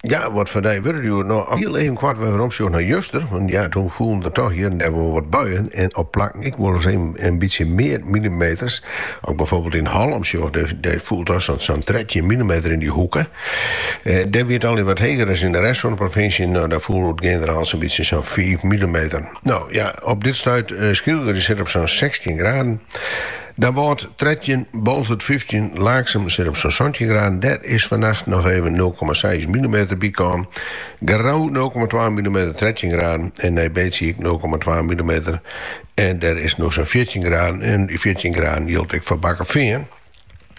Ja, wat foar dei wurde it hjoed no? Hiel even koart weromsjoch nei juster, want ja, toen foelen der toch hjir en dêr wol wat buien en op plakken ek wol ris even in bytsje mear milimeters. As ik byfoarbyld yn Hallum sjoch, dêr foel sa'n trettjin milimeter yn dy hoeke. Dêr wie it allegear wat heger as yn de rest fan de provinsje, no dêr foel oer it generaal sa'n bytsje sa'n fiif milimeter. No ja, op dit stuit, Skylge, dy sit op sa'n sechstjin graden. Damwâld trettjin, Boalsert fyftjin, Laaksum sit op sa'n santjin graden. Dêr is fannacht noch even nul komma seis millimeter bykommen. Grou nul komma twa millimeter, trettjin graden. En Nij Beets ek nul komma twa millimeter. En dêr is it no sa'n fjirtjin graden. En dy fjirtjin graden jildt ek foar Bakkefean.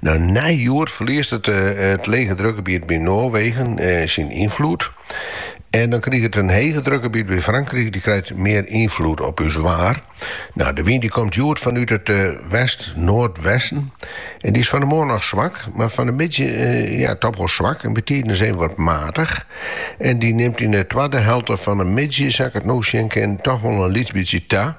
No, nei hjoed ferliest it lege drukgebiet by Noarwegen syn ynfloed. En dan kriget it in hege drukgebiet by Frankryk, dy krijt mear ynfloed op ús waar. Nou, de wyn dy komt hjoed fanút it west-noardwesten en dy is fan de moarn noch swak, mar fan de middei ja, toch wol swak en bytiden even wat matich. En dy nimt yn de twadde helte fan de middei, sa't ik it no sjen kin, toch wol in lyts bytsje ta.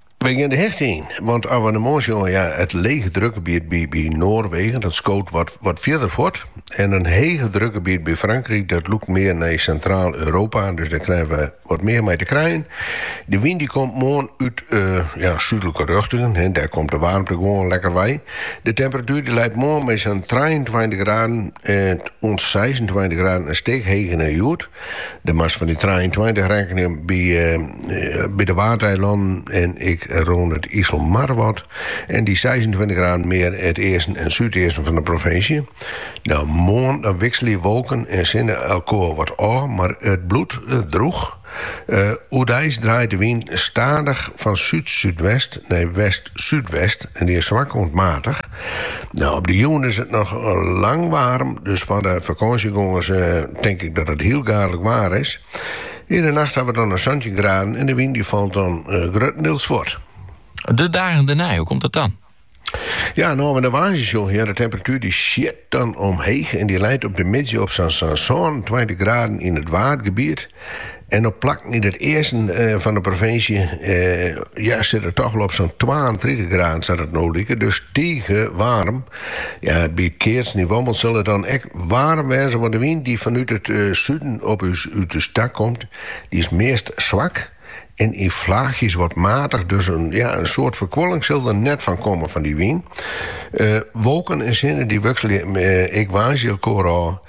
Wy gean de hichte yn, want as we nei moarn sjogge, ja, it lege drukgebiet by Noarwegen, dat skoot wat fierder fuort, en in hege drukgebiet by Frankryk, dat lûkt mear nei Sintraal-Europa, dus dêr krije we wat mear mei te krijen. De wyn dy komt moarn út súdlike rjochtingen, dêr komt de waarmte gewoan lekker wei. De temperatuer dy leit moarn by sa'n trijeentweintich graden oant seisentweintich graden, in stik heger as hjoed. Dan moatst fan dy trijeentweintich rekkenje by, by de Waadeilannen en ek rûn it Iselmar wat. En dy seisentweintich graden mear it easten en súdeasten fan de provinsje. No, moarn dan wikselje wolken en sinne elkoar wat ôf, mar it bliuwt drûch. Oerdeis draait de wyn stadich fan súd-súdwest nei west. súdwest en dy is swak oant maatich. Nou, op de jûn is it noch lang waarm, dus foar de fakânsjegongers tink ik dat it hiel gaadlik waar is. Yn de nacht hawwe we dan in santjin graden en de wyn dy falt dan gruttendeels fuort. De dagen dêrnei, hoe komt dat dan? Ja, no, as we de woansdei sjogge, ja, de temperatuer dy sjit dan omheech en dy leit op de middei op sa'n 27 graden yn it Waadgebiet. En op plakken yn it easten fan de provinsje ja, sit it toch wol op sa'n 32 graden sa't it no liket. Dus tige waarm. Ja, by it keatsen yn Wommels sil it dan ek waarm wêze, want de wyn dy't fanút it suden op ús út ús ta komt, dy is meast swak en yn flaachjes wat matich. Dus in ja, in soad ferkoeling sil der net fan komme fan dy wyn. Wolken en sinne dy wikselje ek woansdei elkoar ôf.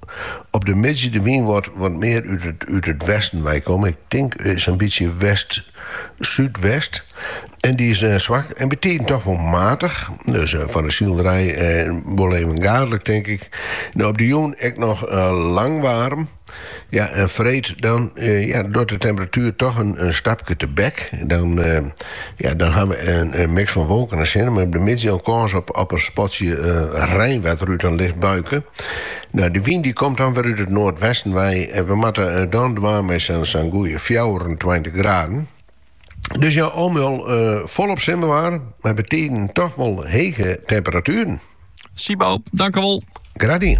Op de middei de wyn wat mear út it westen wei komme, ik tink sa'n bytsje west-súdwest, en dy is swak en bytiden toch wol matich, dus foar de silerij wol even gaadlik tink ik. Op de jûn ek noch lang waarm, ja en freed dan ja docht de temperatuer toch in stapke tebek, dan ha we in miks fan wolken en sin, mei op de middei al kâns op in spatsje reinwetter út in licht buike. Nou, de wyn die komt dan wer út it noardwesten wei en we moatte eh, dan dwaan mei sa'n sa'n goeie fjouwerentweintich graden. Dus ja, al mei al eh, volop simmerwaar, maar bytiden toch wel hege temperaturen. Sibo, dankewol. Graach dien.